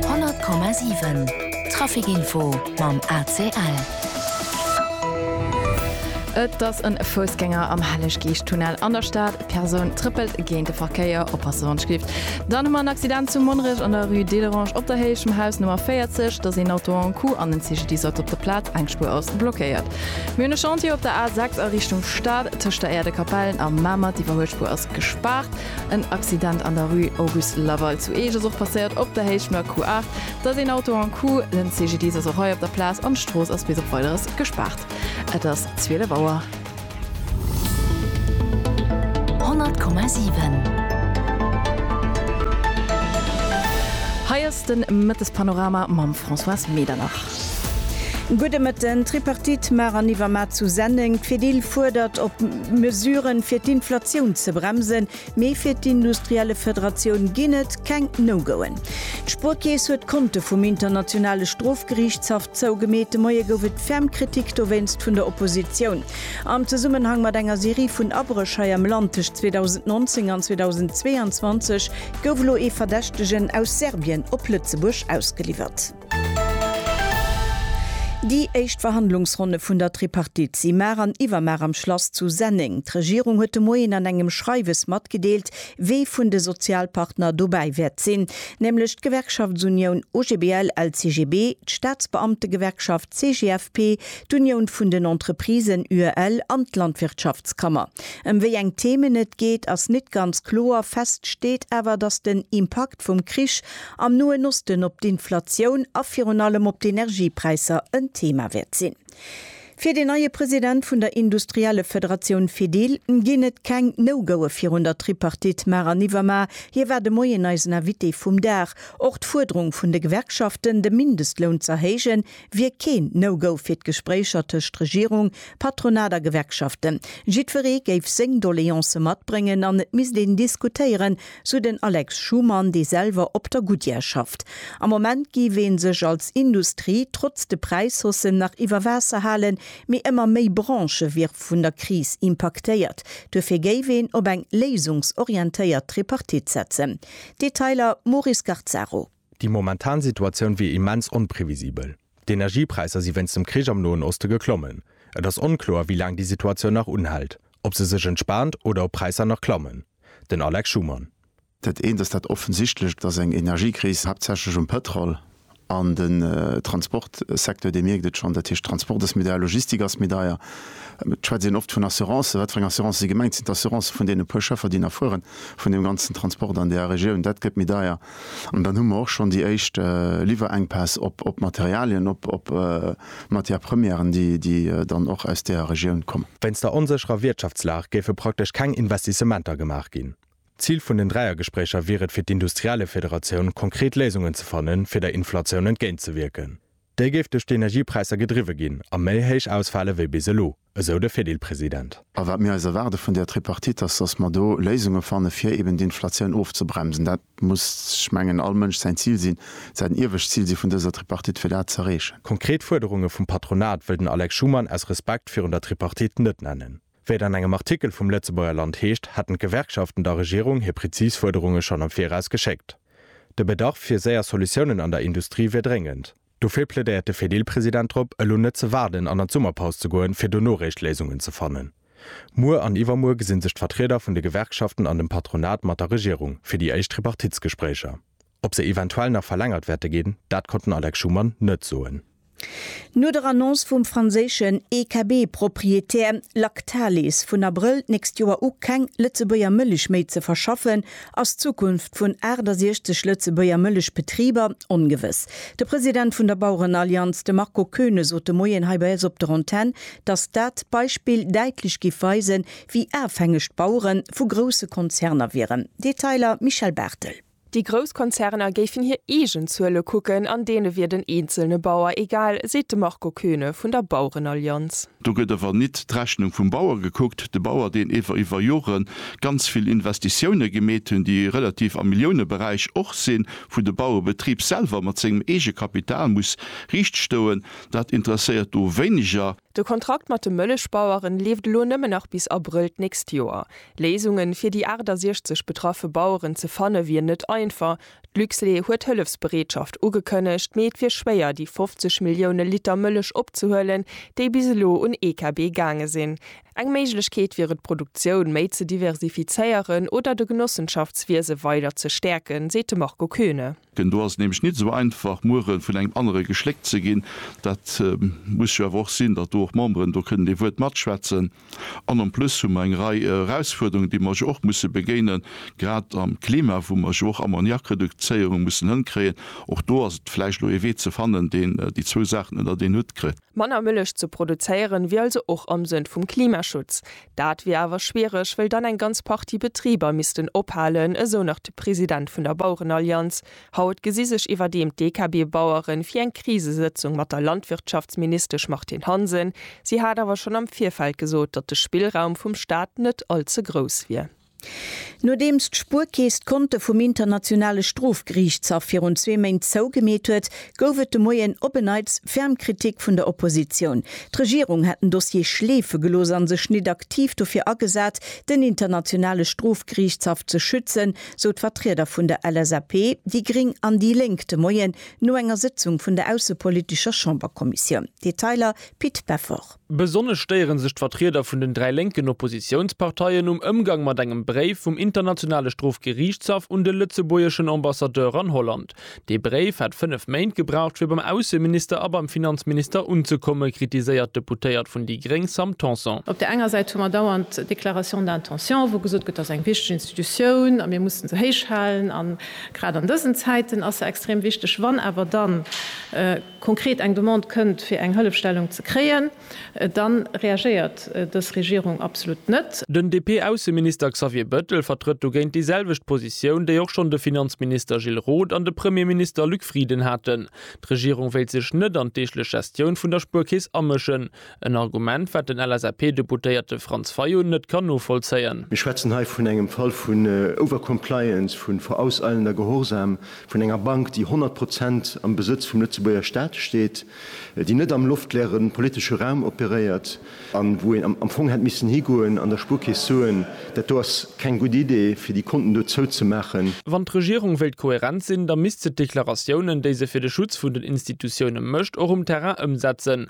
100,7 Traficinfo mam ACL. Et ass e Foussgänger am Helleg-Geescht-Tunnel an der Stad. D'Persoun trëppelt géint de Verkéier. Oppasse wann et schléift. Dann hu mer en Accident zu Monnerech an der Rue Delerange op der Héicht vum Haus Nummer 40. Et ass een Auto en coup an en CGDIS ass op der Plaz. Eng Spuer ass blockéiert. Mir hunn e Chantier op der A6 a Richtung Stad tëscht der Äerdekapell a Mamert. D'Iwwerhuelspuer ass gespaart. En Accident an der Rue Auguste Laval zu Eech ass och passéiert op der Héicht vun der Q8. Et ass een Auto en Coup, den CGDIS ass och hei op der Plaz an d'Strooss ass bis op Weideres gespaart. Et ass 12 Auer. 100,7. Hei ass de Mëttespanorama mam Françoise Medernach. Gudde Mëtten, D'Tripartite mar an iwwer mar zu Senneng. D'Fedil fuerdert op Mesuren, fir d'Inflatioun ze bremsen, mee fir d'Industriellefederatioun ginn et keng No-Goen. D'Spuerkeess huet d'Konte vum Internationale Strofgeriichtshaff zougemeet. De Moie gouf et ferm Kritik dowéinst vun der Oppositioun. Am Zesummenhang mat enger Serie vun Abréch hei am Land tëscht 2019 an 2022 gouf elo ee Verdächtegen aus Serbien op Lëtzebuerg ausgeliwwert. Déi éischt Verhandlungsronne vun der Tripartite si mar an iwwermar am Schlass zu Senneng. D'Regierung huet de Moien an engem Schreiwes matgedeelt, wie vun de Sozialpartner dobäi wäert sinn, nämlech d'Gewerkschaftsunioun OGBL-LCGB, d'Staatsbeamtegewerkschaft CGFP, d'Unioun vun den Entreprisen UEL an d'Landwirtschaftskammer. Ëm wéi eng Themen et geet, ass nit ganz kloer, fest steet awer, datt den Impakt, Impakt vum Krich am Noen Osten op d'Inflatioun a virun allem op d'Energiepräisser en Thema wäert sinn. Fir den neie President vun der Industriellefederatioun Fedil ginn et keng No-Goe virun der Tripartite mar an iwwermar. Hie war de Moien eisen Invité vum Dag. Och d'Fuerderung vun de Gewerkschaften, de Mindestloun z'erhéijen, wier keen No-Go fir d'Gespréicher tëscht Regierung, Patronat a Gewerkschaften. Jiddweree géif seng Doleancë matbréngen an et misst een diskutéieren, sou den Alex Schumann, dee selwer op der Goodyear schafft. Am Moment giff ee sech als Industrie trotz de Präishaussen nach iwwer Waasser halen, mee ëmmer méi Branchë wiere vun der Kris impaktéiert. Duerfir géif een op eng léisungsorientéiert Tripartite setzen. Detailer Maurice Garzaro. Déi momentan Situatioun wier immens onprevisibel. D'Energiepräisser si wéinst dem Krich am Noen Oste geklommen. Et ass onkloer, wéi laang déi Situatioun nach unhält, ob se sech entspaant oder ob Präisser nach klammen. Den Alex Schumann. Dat eent ass dat Offensichtlecht, dass eng Energiekris haaptsächlech um Pëtrol an den Transportsecteur, Dir mierkt et schonn, dat heescht Transport ass méi deier, Logistik ass méi deier. Et schwätzt een oft vun Assurancen. Wat fir eng Assurancen si gemengt? Sinn d'Assurancen vun deene puer Schëffer, déi nach fueren, vun deem ganzen Transport an där Regioun? Dat gëtt méi deier. An dann hu mer och schonn déi éischt Liwwerenkpäss op Materialien, op Matières premièren, déi dann och aus där Regioun kommen. Wéinst der onsécherer Wirtschaftslag géife praktesch keng Investissementer gemaach ginn. Zil vun den Dräiergespréicher wier et fir d'Industriellefederatioun konkret Léisungen ze fannen, fir der Inflatioun entgéintzewierken. Déi géif duerch d'Energiepräisser gedriwwe ginn a méi héich ausfale wéi bis elo, esou de Fedil-President. A wat mir eis erwaarde vun där Tripartite ass, datt mer do Léisunge fanne fir eben d'Inflatioun ofzebremsen. Dat muss, ech mengen, all Mënsch säin Zil sinn, dat säit en iewescht Zil si vun dëser Tripartite, fir dat z'erreechen. Konkret Fuerderunge vum Patronat wëll den Alex Schumann aus Respekt virun der Tripartite net nennen. Wéi et an engem Artikel vum Lëtzebuerger Land heescht, hätten d'Gewerkschaften der Regierung hir präzis Fuerderunge schonn am Viraus geschéckt. De Bedarf fir séier Solutiounen an der Industrie wier dréngend. Dofir plädéiert de Fedil-President drop, elo net ze waarden an an d'Summerpaus ze goen, fir dono réischt Léisungen ze fannen. Muer an iwwermuer gesi sech d'Vertrieder vun de Gewerkschaften an dem Patronat mat der Regierung fir déi éischt Tripartitsgespréicher. Ob se eventuell nach verlängert wäerte ginn, dat konnt den Alex Schumann net soen. No der Annonce vum franséischen EKB-Proprietär Lactalis, vun Abrëll d'nächst Joer u keng Lëtzebuerger Mëllech méi ze verschaffen, ass d'Zukunft vun 68 Lëtzebuerger Mëllechbetriber ongewëss. De President vun der Bauerenallianz, de Marco Koeune sot de Moien hei bei eis op der Antenn, datt dat Beispill däitlech giff weisen, wéi afhängeg d'Bauere vu grousse Konzerner wieren. Detailer Michèle Barthel. Déi grouss Konzerner géifen hir eegen Zuele kucken an deene wier den eenzelne Bauer egal, seet de Marco Koeune vun der Bauerenallianz. Do gëtt awer nit d'Rechnung vum Bauer gekuckt, de Bauer, deen ewer iwwer Jore ganz vill Investitioune gemeet hunn, déi relativ am Milliouneberäich och sinn, wou de Bauebetrib selwer mat sengem Eegekapital muss riichtstoen, dat interesséiert do wéineger. De Kontrakt mat de Mëllechbaueren leeft elo nëmmen nach bis Abrëll d'nächst Joer. Léisungen fir déi 68 betraffe Baueren ze fanne wier net einfach. D'Luxlait huet Hëllefsbereetschaft ugekënnegt, mee et wier schwéier déi 50 Millioune Liter Mëllech opzehuelen, déi bis elo un EKB gaange sinn. Eng Méiglechkeet wier et d'Produktioun méi ze diversifizéieren oder de Genossenschaftswiese weider ze stäerken, seet de Marco Koeune. Gen do ass et nämlech nit esou einfach muere vun engem anere geschléckt ze ginn. Dat muss jo awer och sinn, datt do och Memberen do kënnen ee Wuert matschwätzen. An en plus hu mer eng Rei Erausfuerderungen, déi mer jo och musse begéinen, grad am Klima, wou mer jo och Ammoniakreduzéierung mussen hënkréien. Och do ass et vläicht elo ee Wee ze fannen, deen déi zwou Saachen ënnert een Hutt kritt. Manner Mëllech ze produzéieren, wier also och am Sënn vum Klimaschutz. Dat wier awer schwiereg, wëll dann eng ganz Partie Betriber missten ophalen, esou nach de President vun der Bauerenallianz. Haut gesi sech iwwerdeem d'DKB-Baueren fir eng Krisesëtzung mat der Landwirtschaftsministesch Martine Hansen. Si hat awer schonn am Virfeld gesot, datt de Spillraum vum Staat net all ze grouss wier. Nodeems d'Spuerkeess d'Konte vum Internationale Strofgeriichtshaff virun zwee Méint zougemeet huet, gouf et de Moien op en Neits ferm Kritik vun der Oppositioun. D'Regierung hätt den Dossier schleefe gelooss an sech nit aktiv dofir agesat, den Internationale Strofgeriichtshaff ze schützen, sou d'Vertrieder vun der LSAP, déi gréng an déi lénk de Moien no enger Sëtzung vun der aussepolitescher Chamberkommissioun. Detailer, Pit Peffer. Besonnesch stéiere sech d'Vertrieder vun den dräi lénken Oppositiounsparteien um Ëmgang mat engem Bréif vum Internationale Strofgeriichtshaff un de lëtzebuergeschen Ambassadeur an Holland. Dee Bréif hätt fënnef Méint gebraucht fir beim Ausseminister a beim Finanzminister unzekommen, kritiséiert d'Deputéiert vun déi gréng Sam Tanson. Op där enger Säit hu mer dauernd Déclarations d'intention, wou gesot gëtt, dat ass eng wichteg Institutioun a mir mussen se héich halen, a grad an dësen Zäiten ass se extrem wichteg. Wann awer dann. konkret eng Demande kënnt fir eng Hëllefstellung ze kréien, dann reagéiert dës Regierung absolut net. Den DP-Ausseminister Xavier Bettel vertrëtt dogéint déi selwecht Positioun, déi och schonn de Finanzminister Gilles Roth an de Premierminister Luc Frieden haten. D'Regierung wéilt sech net an d'deeglech Gestioun vun der Spuerkeess amëschen. En Argument, wat den LSAP-Deputéierte Franz Fayot net kann novollzéien. Mir schwätzen hei vun engem Fall vun Overcompliance, vu vorauseilender Gehorsam vun enger Bank, déi 100 Prozent am Besëtz vum Lëtzebuerger Stat steet, déi net am loftleere politesche Raum operéiert a wou een am Fong hätt missen higoen an der Spuerkeess soen, Dat do ass keng gutt Idee, fir déi Konten do zouzemaachen. Wann d'Regierung wéilt kohärent sinn, da misst se d'Deklaratiounen, déi se fir de Schutz vun den Institutioune mécht, och um Terrain ëmsetzen.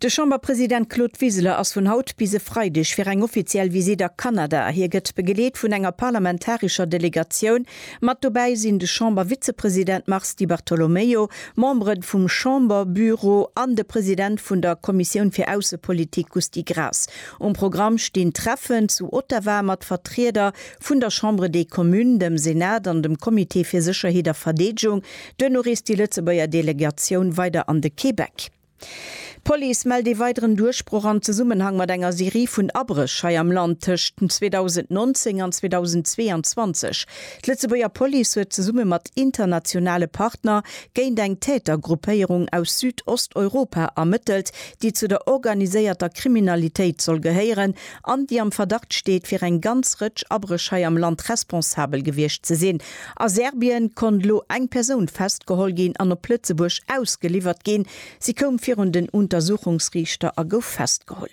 De Chamberpresident Claude Wiseler ass vun haut bis e Freideg fir eng offiziell Visitt a Kanada. Hie gëtt begeleet vun enger parlamentarescher Delegatioun. Mat dobäi sinn de Chambervizepresident Mars Di Bartolomeo, Membere vum Chamberbüro an de President vun der Kommissioun fir Aussepolitik Gusty Graas. Um Programm stinn Treffen zu Ottawa mat Vertrieder vun der Chambre des Communes, dem Senat an dem Comité fir Sécherheet a Verdeedegung. Duerno reest déi Lëtzebuerger Delegatioun weider an de Québec. D'Police mellt ee weideren Duerchbroch am Zesummenhang mat enger Serie vun Abréch hei am Land tëscht 2019 an 2022. D'Lëtzebuerger Police huet zesumme mat internationale Partner géint eng Tätergruppéierung aus Südosteuropa ermëttelt, déi zu der organiséierter Kriminalitéit soll gehéieren an déi am Verdacht steet, fir eng ganz Rëtsch Abréch hei am Land responsabel gewiescht ze sinn. A Serbien konnt elo eng Persoun festgeholl ginn an op Lëtzebuerg ausgeliwwert ginn. Si koum virun den Untersuchungsriichter a gouf festgeholl.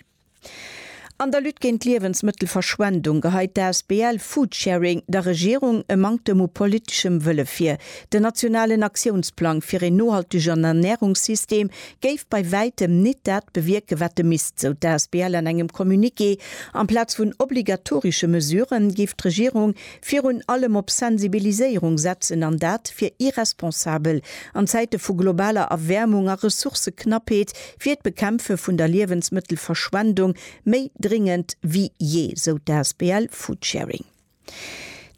An der Lutte géint d'Liewensmëttelverschwendung geheit d'ASBL Foodsharing der Regierung e Manktem u politeschem Wëlle vir. Den nationalen Aktiounsplang fir een nohaltegen Ernärungssystem géif bei wäitem nit dat bewierken, wat e misst, sou d'ASBL an engem Communiqué. Amplaz vun obligatorische Mesuren géif d'Regierung Virun allem op Sensibiliséierung setzen an dat wier irresponsabel. An Zäite vu globaler Erwäermung a Ressourcëknappheet wier d'Bekämpfe vun der Liewensmëttelverschwendung méi dringend wéi jee, sou d'asbl Foodsharing.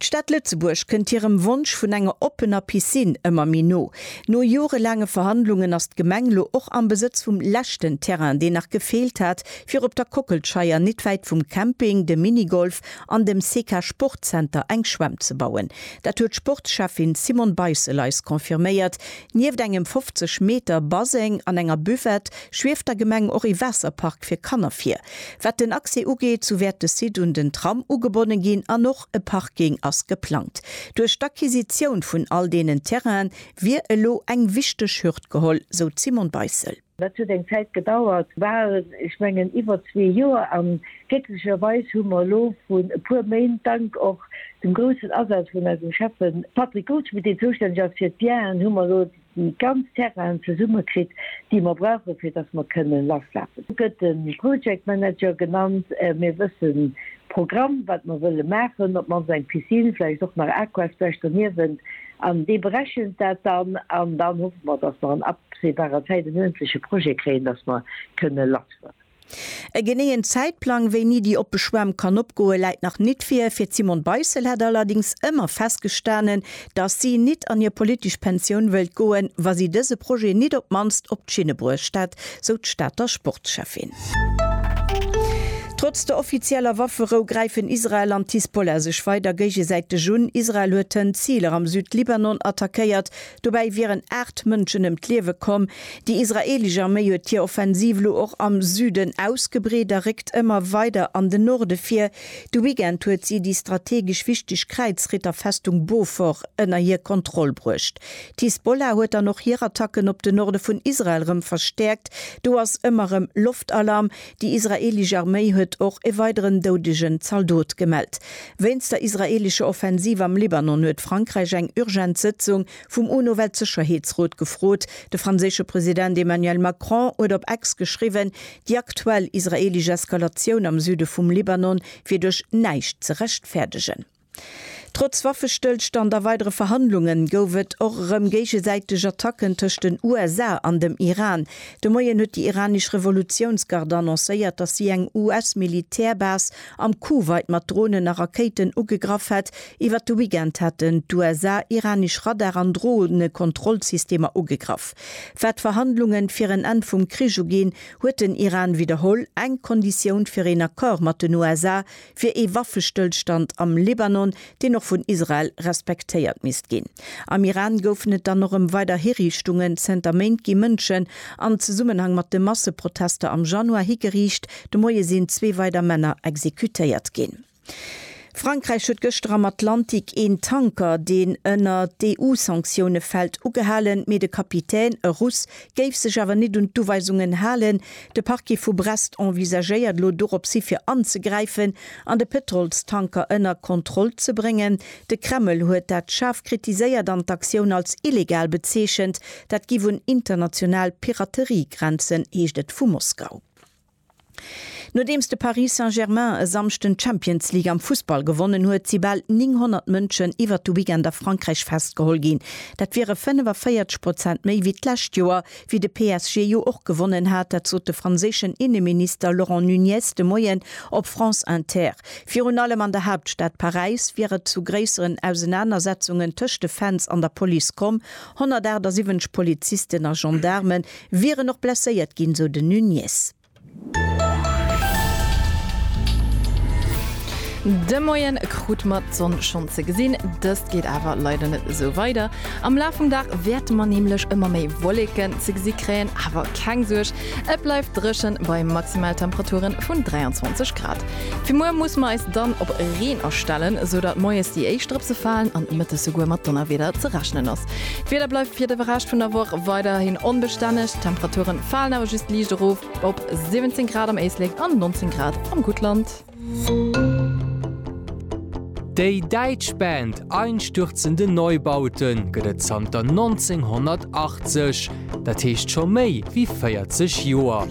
D'Stad Lëtzebuerg kënnt hirem Wonsch vun enger oppener Piscine ëmmer méi no. No jorelaange Verhandlungen ass d'Gemeng lo och am Besëtz vum leschten Terrain, deen nach gefeelt hat, fir op der Kockelscheier, nit wäit vum Camping, de Minigolf an dem SECA Sportzenter eng Schwämm ze bauen. Dat huet d'Sportschäffin Simone Beissel eis confirméiert. Nieft engem 50 Meter Baseng an enger Buvette schwieft der Gemeng och ee Waasserpark fir Kanner vir. Wat den Accès ugeet, sou wäert de Site un den Tram ugebonne ginn an och e Parking ass geplangt. Duerch d'Acquisitioun vun all deenen Terrainen wier elo eng wichteg Hürd geholl, sou d'Simone Beissel. Dat huet eng Zäit gedauert, bal, ech mengen iwwer zwee Joer, a glécklecherweis hu mer elo vrun e puer Méint, dank och dem groussen Asaz vun eisem Schäffe Patrick Goldschmidt, deen zoustänneg ass fir d'Bienen, hu mer elo déi ganz Terrainen zesumme kritt, déi mer brauchen, fir dass mer kënnen lasslafen. Do gëtt de Project Manager genannt. Mir wëssen de Programm, wat mer wëlle maachen, op d'mannst eng Piscine, vläicht och nach Aquasplash doniewent. An déi berechent dat dann. An dann hoffe mer, dass mer an absehbarer Zäit en uerdentlesche Projet kréien, dass mer kënne lassfueren. E geneeën Zäitplang, wéini déi oppe Schwämm kann opgoe läit nach nit vir. Fir d'Simone Beissel hätt allerdings ëmmer festgestanen, dass si nit an hir politesch Pensioun wëllt goen, wa si dëse Projet nit op d'mannst op d'Schinne bruecht hätt, sou d'Stater Sportschäffin. Trotz der offizieller Wafferou gräifen Israel an d'Hisbollah sech weider géigesäiteg un. Israel huet tënn Ziler am Südlibanon attackéiert. Dobäi wieren aacht Mënschen ëm d'Liewe komm. Déi israeelesch Arméi huet hir Offensiv elo och am Süden ausgebreet a réckt ëmmer weider an den Norde vir. De Weekend huet si déi strategesch wichteg Kräizritterfestung Beaufort ënner hir Kontroll bruecht. D'Hisbollah huet dann och hir Attacken op de Norde vun Israel rëm verstäerkt. Do ass ëmmer rëm Loftalarm. Déi israeelesch Arméi huet och e weideren doudegen Zaldot gemellt. Wéinst der israeelescher Offensiv am Libanon huet Frankräich eng urgent Sëtzung vum UNO-Weltsëcherheetsrot gefrot. De franséische President Emmanuel Macron huet op X geschriwwen, déi aktuell israeelesch Eskalatioun am Süde vum Libanon wier duerch näischt ze rechtfäerdegen. Trotz Waffestëllstand a weidere Verhandlunge gouf et och erëm géigesäiteg Attacken tëscht den USA an dem Iran. De Moien huet déi iranesch Revolutiounsgard annoncéiert, datt si eng US-Militärbase am Kuwait mat Dronen a Rakéiten ugegraff hätt. Iwwer de Weekend haten d'USA iranesch Radar an Dronekontrollsystemer ugegraff. Wat d'Verhandlunge fir en Enn vum Krich uginn, huet den Iran widderholl, eng Konditioun fir een Accord mat den USA fir ee Waffestëllstand am Libanon, deen och vun Israel respektéiert misst ginn. Am Iran goufen et dann och ëm weider Hiriichtungen. Zënter Méint gi Mënschen am Zesummenhang mat de Masseprotester am Januar higeriicht. De Moie sinn zwee weider Männer exekutéiert ginn. Frankräich huet gëschter am Atlantik een Tanker, deen ënner d'EU-Sanktioune fält, ugehalen, mee de Kapitän, e Russ, géif sech awer nit un d'Uweisungen halen. De Parquet vu Brest envisagéiert elo doropshi fir anzegräifen an de Pëtrolstanker ënner Kontroll ze bréngen. De Kreml huet dat schaarf kritiséiert an d'Aktioun als illegal bezeechent. Dat giff un international Piraterie grenzen, heescht et vu Moskau. Nodeems de Paris Saint-Germain e Samschden d'Champions League am Fussball gewonnen huet, si bal 900 Mënschen iwwert de Weekend a Frankräich festgeholl ginn. Dat wiere 45 Prozent méi wéi d'lescht Joer, wéi de PSG jo och gewonnen hat. Dat sot de franséischen Inneminister Laurent Nunez de Moien op France Inter. Virun allem an der Haaptstad Paräis wier et zu gréisseren Ausenanersetzungen tëscht de Fans an der Police komm. 178 Polizisten a Gendaarme Wieren och blesséiert ginn, sou den Nunez. De Moie krute mer d'Sonn schonn ze gesinn, dëst geet awer leider net esou weider. Am Laf vum Dag wäerte mer nämlech ëmmer méi Wolleken ze gesi kréien, awer keng Suerg, et bleift dréchen bei Maximaltemperature vun 23 Grad. Fir muer musse mer eis dann op Reen astellen, sou datt moies déi éischt Drëpse falen an mëttes souguer mat Donnerwieder ze rechnen ass. D'Wieder bleift fir de Rescht vun der Woch weiderhin onbestänneg, d'Temperature falen awer just liicht erof op 17 Grad am Éislek an 19 Grad am Guttland. Déi däitsch Band Einstürzende Neubauten gëtt et zanter 1980, dat heescht scho méi wéi 40 Joer.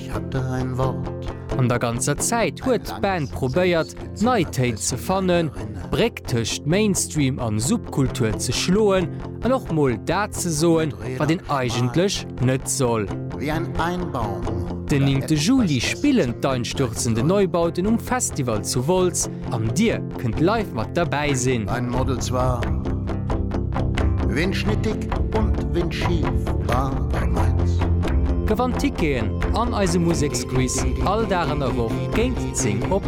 An der ganzer Zäit huet d'Band probéiert, d'Neitéit ze fannen, d'Bréck tëscht Mainstream an Subkultur ze schloen an och mol dat ze soen, wat een eigentlech net soll. Den néngte Juli spillen d'Einstürzende Neubauten um Festival zu Wolz an dir kënnt live mat derbäi sinn. Gewannt Ticketen an eise Museksquiz all Dag an der Woch géint 10 op.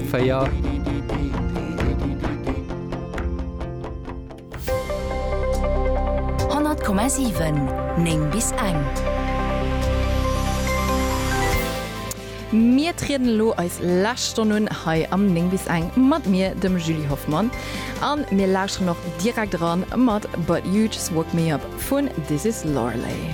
100,7 9 bis eng. Mir trieden elo eis lescht Stonn un hei am 9 bis eng mat mir, dem Julie Hoffmann, a mir lauschteren och direkt eran mat But You Just Woke Me Up vun This Is Loreley.